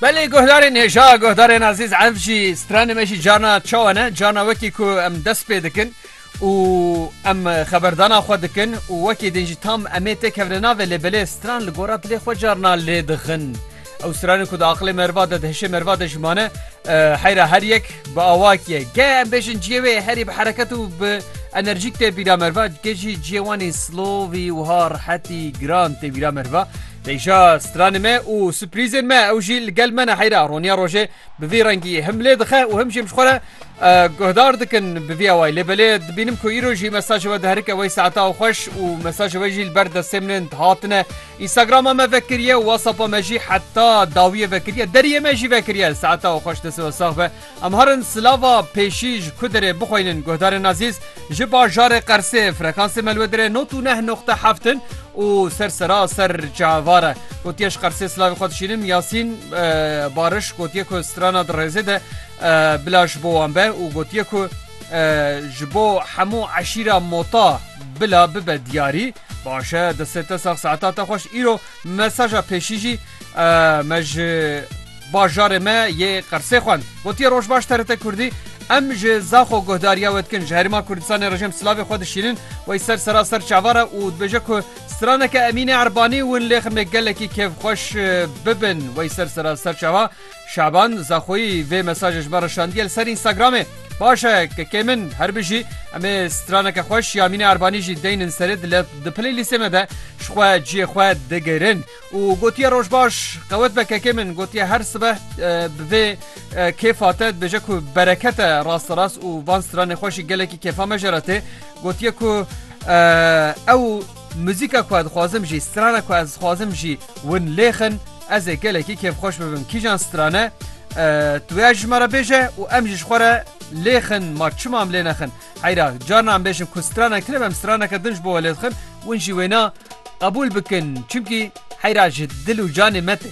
Belê guhdarên hêja guhdarên azîz ev jî stranê me jî carna çawa ne carna wekî ku em dest pê dikin û em xeberdana xwe dikin û wekî din jî tam emê tê kevne navê lê belê stran li gora dilê xwe carna lê dixin. Ew stranê ku di aqilê merva de di hişê merva de jimane heyra her yek bi awakiye ge em bêjin ciyê wê herî bi hereket û bi enerjîk tê bîra merva ge jî ciyê wanî silovî wiha rehetî giran tê bîra merva. Pêşa stranên me û suprîzên me ew jî li gel me ne heyra roniya rojê bi vî rengî him lê dixe û him jî em ji xwe re guhdar dikin bi vî awayî lê belê dibînim ku îro jî mesajê we diherike wey saeta xweş û mesajê we jî li ber destê min ên dihatine Instagrama me vekiriye û WhatsAppa me jî heta dawiyê vekiriye deriyê me jî vekiriye saeta xweş destê we sax be. Em harin silava pêşî ji Kudirê bixweynin guhdarên Azîz ji bajarê Qersê frekansê me li wê dire not û neh noqte heft in û ser sera ser çavar e. Gotiye ji Qersê silavê xwe dişînim Yasîn Bariş gotiye ku strana di rêzê de bila ji bo wan be û gotiye ku ji bo hemû eşîra Mota bila bibe diyarî. Baş e destê te sax saeta te xweş. Îro mesaja pêşî jî me ji Bajarê me yê Qersê xwend. Gotiye roj baş TRT Kurdî, Em ji Zaxo guhdariya we dikin. Ji Herêma Kurdistanê re jêm silavê xwe dişînin. Wey ser sera ser çavar e û dibêje ku straneke Emînê Erbanî win lê ximê gelekî kêfxweş bibin. Wey ser sera ser çava Şaban Zaxoyî vê mesajê ji me re şandiye li ser Instagramê. Baş e kekê min her bijî. Em ê straneke xweş ya Emînê Erbanî jî deynin serê di playlîstê me de ji xwe ciyê xwe digirin. û gotiye roj baş qewet be kekê min gotiye her sibeh bi vê kêfa te dibêje ku bereket e rast rast û van stranê xwe jî gelekî kêfa me jere tê gotiye ku ew muzîka ku ez dixwazim jî strana ku ez dixwazim jî win lêxin ez ê gelekî kêfxweş bibim kîjan strane tu ya ji me re bêje û em jî ji xwe re lêxin ma çima em lê nexin Heyra carna em bêjin ku strana kirim em straneke din ji bo welê dixin win jî wêna qebûl bikin çimkî heyra ji dil û canê me tê.